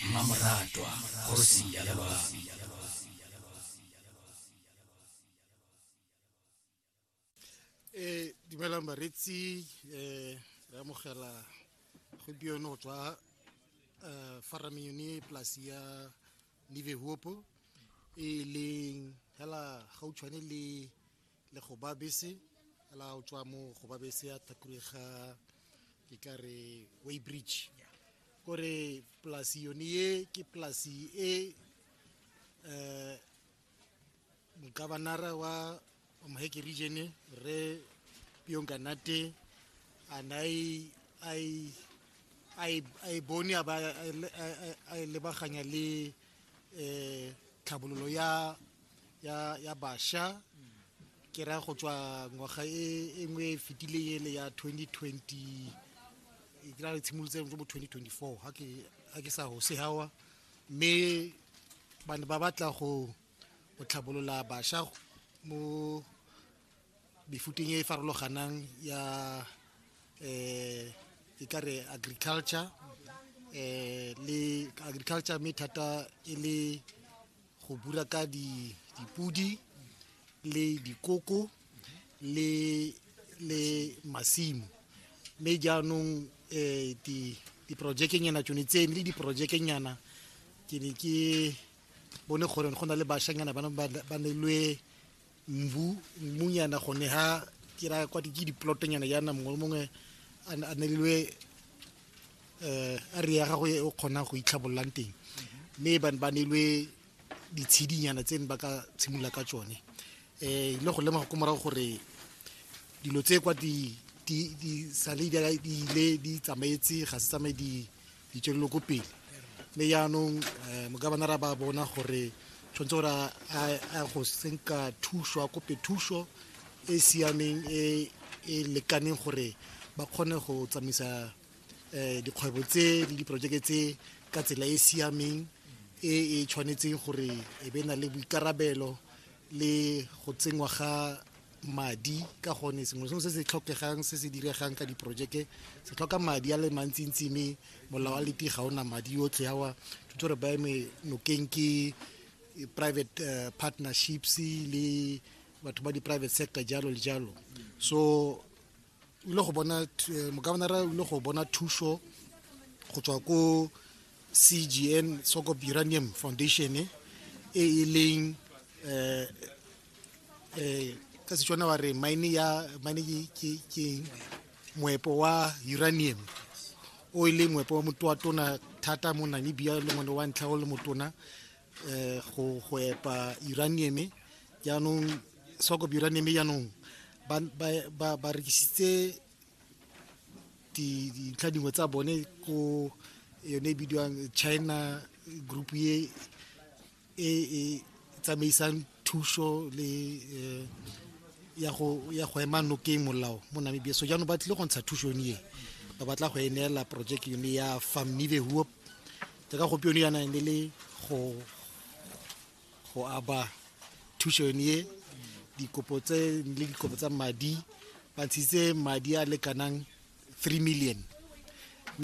mmamoratwa kgosi ya lebaka e dumelang baretsi um re amogela gompieno go tswa um farame yone polasi ya nivehopo e leng fela gautshwane le le go ba bese la o tswa mo go ba bese ya thakure ga ke tla re way bridge kore polasi yone ye ke polasi e um mokabanara wa moheke region re pionkanate a na a e bone a e lebaganya le um tlhabololo ya ya ya basha ke ra go tswa ngwaga e, e nngwe e fetileng ele ya 2020 e ke ra re tshimolotse mo 2024 ha ke ha ke sa hose hawa mme ba ne ba batla go go tlhabolola basha mo mefuteng e e farologanang ya eh ke ka re agriculture eh le agriculture mme thata e le go bura ka dipodi le dikoko le le masimo mme jaanong um diprojekenyana tsone tsene le diprojekenyana ke ne ke bone gore go na le bashanyana ba nelwe mbu mmunyana gone ha ke ra kwa ke diplotonyana yana mongwe le mongwe a nelilwe um a re ya gagwe o kgonang go itlhabololang teng mme ba ne ba nelwe ditshidinyana tse ne ba ka tshimolola ka tsone um ile go lemoga ko morago gore dilo tse kwa di sale di ile di tsamaetse ga se tsamaye di ditswelelo ko pele mme yaanong eh, mogabana ra ba bona gore tshwanetse gore a go senka thuso a kope thuso e siameng e e lekaneng gore ba kgone go tsamaisa um dikgwebo tse le diporojeke tse ka tsela e siameng e e tshwanetseng gore e be na le boikarabelo le go tsenngwa ga madi ka gone sengwe sengwe se se tlhokegang se se diregang ka diporojeke se tlhoka madi a le mantsintsi mme molao wa leti ga ona madi yotlhe awa tshwanetse re baeme nokeng ke eh, private uh, partnerships le batho ba di-private sector jalo le jalo so o ile go bona eh, mokabanara o ile go bona thuso go tswa ko cgn sokop uranium foundation e e leng um ka setswana wa re mine ya mine ke moepo wa uranium o e leng moepo wa motho wa tona thata mo namibia le ngwane wa ntlha o le motona eh, go go epa uranium jaanong soko uranium jaanong ba ba ba rekisitse dintlha dingwe tsa bone ko yone e bidiwang china group ye e e tsamaisang thuso le eh, ya go ya go ema nokeng molao mo namibia so jaanong ba tlile go ntsha thuso yone e ba batla go e neela project yone ya famile huop jaaka gompieno yana e ne le go go aba thuso yone e dikopo tse le dikopo tsa madi ba ntshitse madi a lekanang 3 million